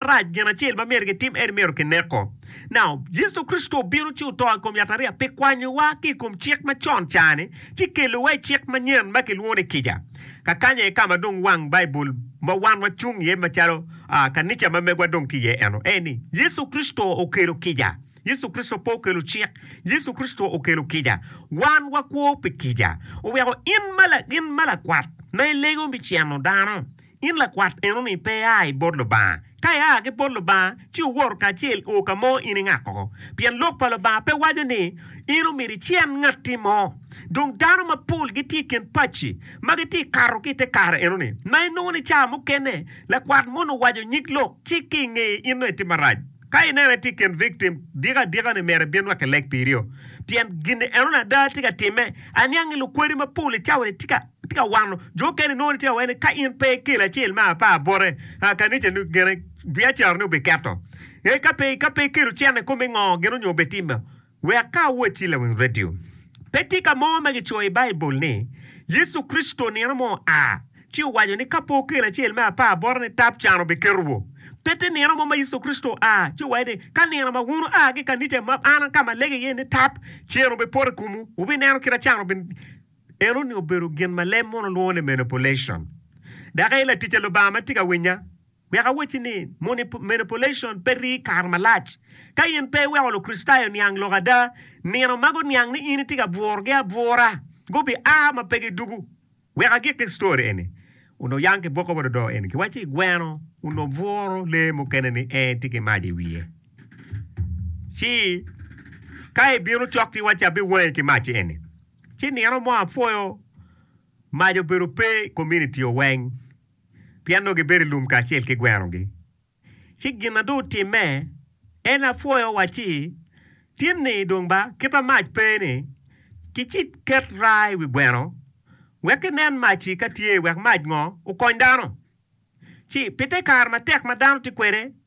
marac, gin acel ma myero gitim en myero kineko. Now, Yecu Kricito obino ci oto i kom yatariya pi kwanyowa ki i kom cik macon ca-ni ci kelowa i cik manyen ma kilwongo ni kica. Kakanya aye ka ma dong wang Baibul ma wan wacung iye macalo kanica ma megwa dong tye iye eno aye ni, Yecu Kricito okelo kica. Yecu Kricito pe okelo cik, Yecu Kricito okelo kica. Wan wakwo pi kica. Oweko in ma lakwat ma ilego me ceno dano, In lakwat enoni pe ia i bot Lubanga? Ka ia ki bot Lubanga, ci wor kacel o ka mo in ingak oko. Pien Lok pa Lubanga pe waco ni in omyero icen ngatti mo. Dong dano mapol gitye i kin paci ma gitye kato ki i te kare enoni, ma inongo ni ca mukene lakwat moni owaco nyig lok ci ki ingeye in dong itimo marac. Ka ineno itye i kin victim, dik adika ni myero ibin wek ileg pirio, pien gin enoni ada tye ka timme. Aniang ni lukwadi mapol i cawa-ni tye ka. Tye ka wano jo okene nongo tye awene ka in pe ikelo acel me apar bote kanica ni gene biacara ni obiketo ee ka pe ka pe ikelo cen i kome ngo gene onyo obetime wek ka awoc ci lawing radio pe tye ka mo ma gicoyo i baibul ni Yecu Kricito nino mo oa ci owaco ni ka pe okelo acel me apar bote ni tap can obiketo wo pe tye nino mo ma Yecu Kricito oa ci owaco ni ka nino ma wun oa ki kanica ma an ka ma alege iye ni tap cen obipoto i komu wubineno kite can obi Eno ni obedo gin ma leb mono lwongo ni manipulation. Dok aye laticca Lubanga ma tye ka winya, wek awacci ni, manipulation pe rii kare malac. Ka in pe iweko Lukricitayo oniang lok ada, nino ma guniang ni in itye ka bwurogi abwura gubiaa ma pe gidugu. Wek agikki story eni, onongo oyang ki bwoko bot odoo eni. Giwaco i gweno onongo obwuro lee mukene ni en tye ki mac i wiye. Ci ka ibino cok ki wacci abiwangi ki mac eni. Ci nino mo apwoyo mac obedo pe i kominitio weng, pien nongo gibedo i lum kacel ki gwenogi. Ci gin ma dong otimme en apwoyo wa ci tin ni dong ba kita mac pe ni ki ci ket raa i wi gweno wek ki nen mac-ci ka tye wek mac ngo okony dano. Ci pi te kare matek ma dano tye kwede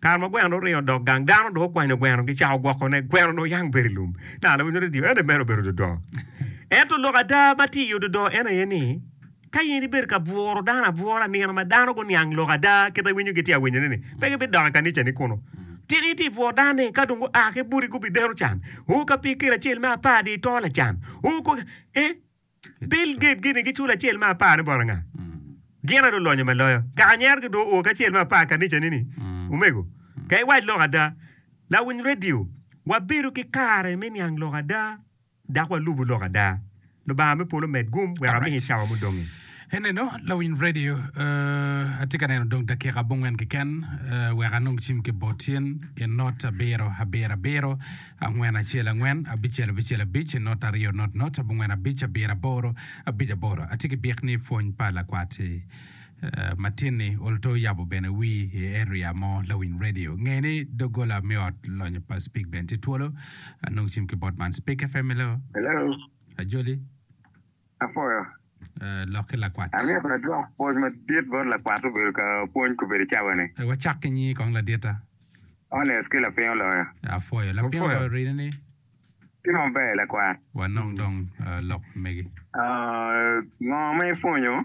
Kare ma gweno dong oringo odok gang, dano dong okwanyo gweno gicako gwokone. Gweno dong oyang bedo i lum. Naka lawiny nongo tye ene mere obedo dodo. Ento lok ada ma tye i ododo en aye ni, ka in ibedo ka bwuro dano abwura, nino ma dano guniang lok ada kit ma iwinyo gitye awinyone-ni, pe gibidok i kanicani kunu. Tika itye ka bwuro dano ni ka dong gua ki boti gubideno can? Oo, ka pikiri acel me apar dye itoo lacan? Oo, kong, ee. Bill Gates gin ni giculo acel me apar ni bot anga? Gin adwa lonyo ma loyo. Kaka nyero ki dwo o ki acel me apar kanica ni ni, Omego, ka iwac lok ada, lawiny radio, wabedo ki kare me niang lok ada dok walubu lok ada. Lubanga me polo omed gum wek amiki cawa mudongi. Eneno, lawiny radio, atye ka neno dong dakika abongwen keken wek anong cim ki bot cen ki not abiro abiro abiro. Angwen acel angwen, abicel abicel abic, not aryo not not, abongwen abic, abiro aboro, abic aboro. Atye ki bik ni Pwony pa Lakwat Matin-ni oluto yabo bene wi i area mo lawiny radio. Nge ni doggola me ot lonyo pa Spik bene tye twolo. Anongo cim ki bot man, Spik FM, Hello? Hello? Ajoli? Apwoyo. Lok ki lakwat. Amyero adwok pwony madit bot lakwat obedo ka pwony kobedo cawa ni. Wacak ki nyingi kong laditta. Honest ki lapiny oloyo. Apwoyo. Lapiny oloyo rine ni. Tye maber lakwat. Wanong dong lok megi. Ngo ma ipwonyo?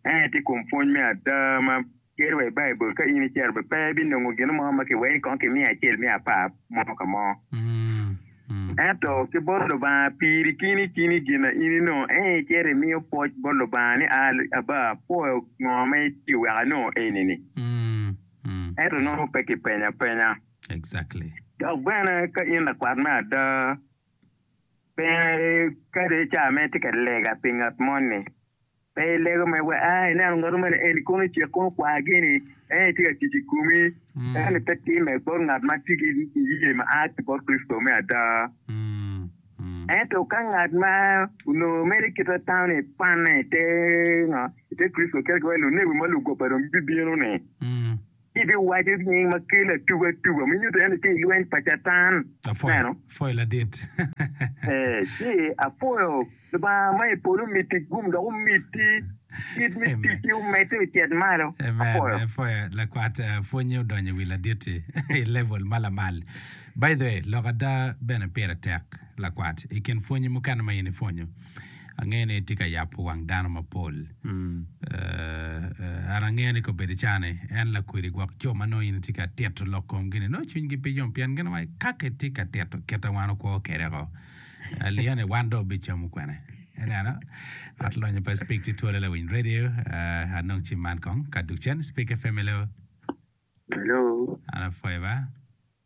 Ento i kom pwony me ada ma tye wa i Baibul, ka in icito bene pe ibinongo gin mo ma kiweki kong ki miya acel miya apar mo ka mo. Ento ki bot Lubanga piri kini kini gin na in inongo en aye icito imiyo pwoc bot Lubanga ni, Abba, apwoyo ngo ma itiyo wek anongo eni-ni. Ento nongo pe kipenya apenya. Dok bene ka in lakwat me ada, Pingo kadi i cawa ma itye ka lega pi ngat moni, pe ilego mere wek, 'Aa, ineno ngatu moni eni kono ocek kono okwar gini, en tye ka tic i komi. Eno pe timme bot ngat ma tye ki niye ma a ki bot Kricito me ada. Ento ka ngat ma onongo mere kite atano-ni kwanne i te Kricito kit ma lunebi ma lugoba dong bibino-ni, Ibiwaco nying ma kel atuba atuba me nyuto en tye i lweny pa Catan. Apwoyo, apwoyo ladit. Ee, ci apwoyo Lubanga ma i polo omiti gum dok omiti kit me ticci omedde ocet malo. Apwoyo. Amen, apwoyo lakwat pwonye odonyo i wi ladit-ti i level ma lamal. By the way, lok ada bene pire tek lakwat i kin pwonyi mukene ma in ipwonyo. Angeyo ni itye ka yabo wang dano mapol. An angeyo ni kobedo icane, en lakwedi gwok jo ma nongo in itye ka tito lok komgi-ni nongo cwinygi pe yom pien gin wai kaka itye ka tito kit ma wan wakwo kwede-ko. Aliyo ni wan dong wabicamo kwene. Ineno? Ot lonyo pa Spik ci twolo lawiny redio. Anong cim man kong ka dukcen? Spik FM, hello? Hello. An apwoyo ba.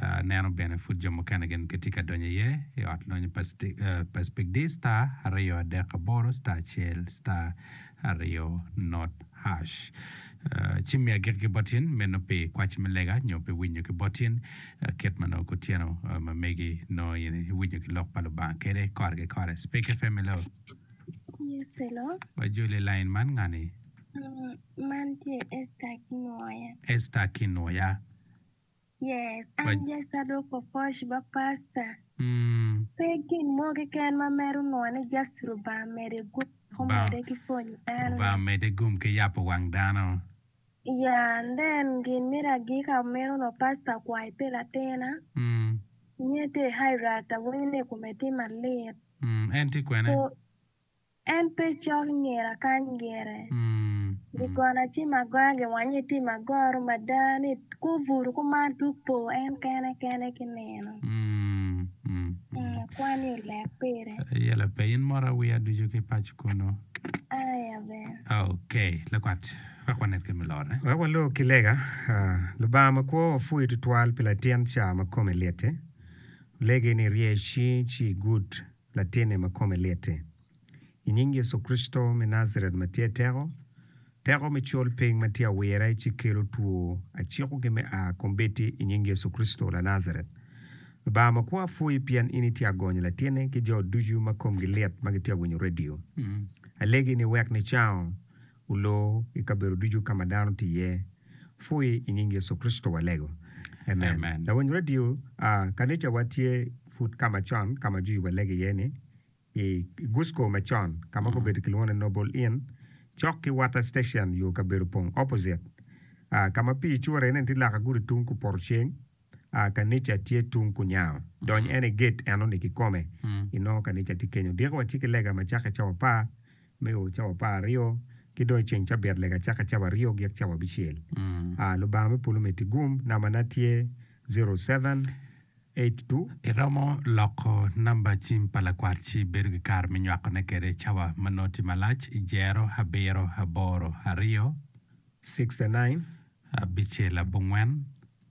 Aneno bene pud jo mukene gin gitye ka donyo iye i ot lonyo pa Pacific di star aryo adek aboro star acel star aryo not hash ci mi agikki ki bot in meno pi kwaci me lega nyo pi winyo ki bot in kit ma nongo kutyeno ma megi nongo in iwinyo ki lok pa Lubanga kede kore ki kore Speke FM hello Yes, hello. wajoli i lain man ngani Mm, man tye Esther Kinwoya. Esther Kinwoya Yes, an yes adwoko coach ma pastor. Pe gin mo keken ma mero nua ni just Lubanga mede gum dok omede ki pwonyo dano. Lubanga omede gum ki yabo wang dano. Ya and then gin mito agika meno nua pastor akwai pi latina nye tye i Hydract awinyo ni i kome tye malit. En tye kwene? En pe cok nyer akany gire. Ri gona ci magoya giwanye ti magoro mada ni kubutu kuman twok po en kene kene ki nino. Akwa ni olek pire. Aye la pe in mora wiya ducu ki pac kunu. Aye aber. Ok, lakwat, wek wanet kit me lorre. Wek walor ki lega. Lubanga makwo wapwoyi tutwal pi latin ca ma kome lit-ti. Olegi ni irye icing ci igud. Latinne ma kome lit-ti. I nying Yecu Kricito me Najaret ma tye teko, teko me col piny ma tye awira ci kelo two, aciko gi me a kombeddi i nying Yecu Kricito Lanajaret. Lubanga makwa pwoyi pien in itye agonyo latinne ki jo ducu ma komgi lit ma gitye awinyo redio. Alegi ni wek nicango olor i kabedo ducu ka ma dano tye iye. Pwoye i nying Yecu Kricito walego. Amen. Lawiny radio, kanicawa tye pud ka macon ka ma jwi walego iye ni, i Gusco macon ka ma gubedo kilwongo ni Noble Inn, cok ki Water Station yo kabedo pong opposite ka ma pii cure-ni tye loka gudi tung kupoto ceng. a kanica tye tung kunyango, dony en i get enoni kikome, inongo kanica tye kenyo. Diko watye ki lega ma cakke cawa apar, me o cawa apar aryo, ki dong i ceng cabit lega cakke cawa aryo gik cawa abicel. A Lubanga me polo miti gum, nambana tye zero seven eight two. Iromo loko namba cim pa lakwat ci ibedo ki kare me nywakone kwede cawa ma nongo tye malac, Jero abiro aboro aryo. Sixty nine. Abicel abongwen.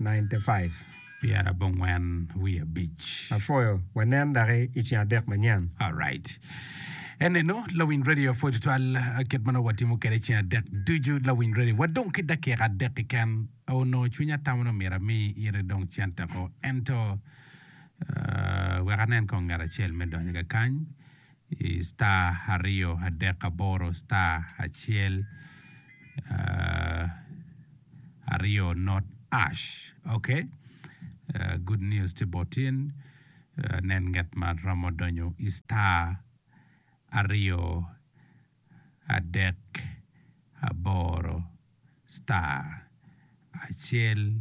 95. Pyera abongwen wiye abic. Apwoyo. Wanen daki i ceng adek manyen. Alright. Enenu lawiny radio pwod tutwal kit ma nongo watimo kwede ceng adek ducu lawiny radio. Wadong ki dakika adek keken. Onongo cwinya tamo ni myero ami ite dong cente ko ento wek anen kong ngat acel me donyo ka kany i star aryo adek aboro star acel aryo not ash ok good news tye bot in nen nget ma romo donyo i star aryo adek aboro star acel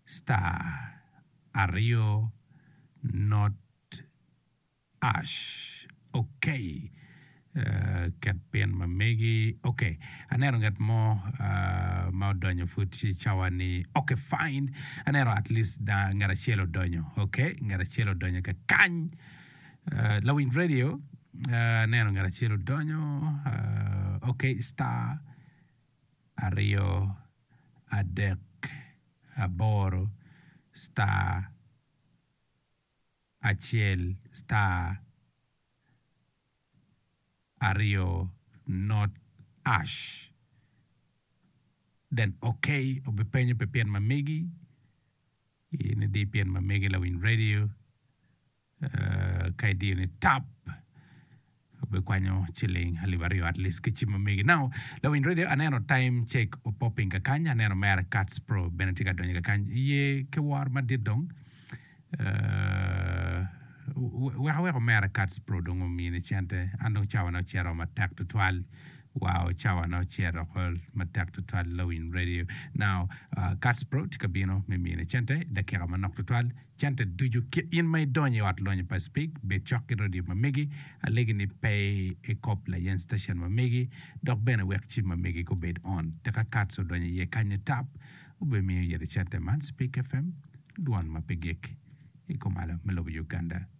star aryo not Ash, Ok, ket pin ma megi. Ok, aneno ngat mo ma odonyo pud ci cawa ni, Ok, fine, aneno at least dang ngat acel odonyo. Ok, ngat acel odonyo ka kany. Lawiny radio, Aneno ngat acel odonyo. Ok, star, aryo, adek, aboro, star. acel star aryo not ash then ok obi penyo pi pin ma megi in idi pin ma megi lawiny radio ka idiyo ni tap. Obikwanyo ciling alip aryo at least ki cim omege. Now lawiny radio aneno time check opoping kakany aneno mere Kats pro bene tye ka donyo kakany iye ki wor madit dong uh wek aweko mere Kats pro dong omini cente an dong cawa ne ocito oo matek tutwal wow cawa ne ocito oko matek tutwal lawiny radio now Kats pro tye ka bino me mini cente dakika manok tutwal. Cente ducu kit in ma idonyo i ot lonyo pa Speke, bed cok ki radio ma megi, alegi ni pe ikop layen station ma megi, dok bene wek cim ma megi gubed on. Tika Katz odonyo iye kany ni tap? Wubimiyo yadi cente man, Speke FM, dwon ma pe gik, i kumalo me lobo Uganda.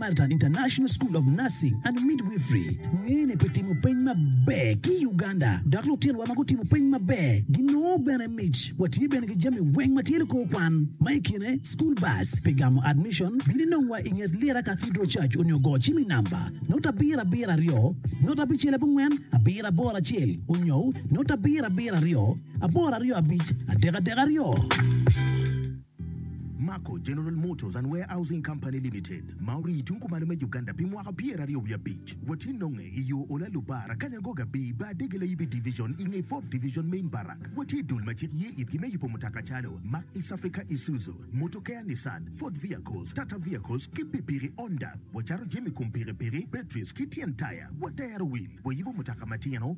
Carlton International School of Nursing and Midwifery ngene pi timo peny maber ki Uganda dok lutinowa ma gutimo peny maber ginongo bene mic. Watye bene ki jami weng ma tye likor kwan ma i kine school bus pi gamo admission. Bin inongwa i nget Lira Cathedral Church onyo go cim i namba note abiro abiro aryo note abicel abongwen abiro aboro acel onyo note abiro abiro aryo aboro aryo abic adek adek aryo. Mako General Motors and Warehousing Company Limited ma orii tung kumalo me Uganda pi mwaka pyeraryo wiye abic watye nonge i yo Ola Lubar Akanya Goga Bii Bar Dege Layibi Division i nge Ford Division Main Barrack watye dul ma cik ye itgi me yubo mutoka calo Mack East Africa Isuzu Motokea Nissan Ford Vehicles Tata Vehicles ki pikpiki Honda wacato jami kom pikipiki batteries ki tyen taya watero wil wayubo mutoka matino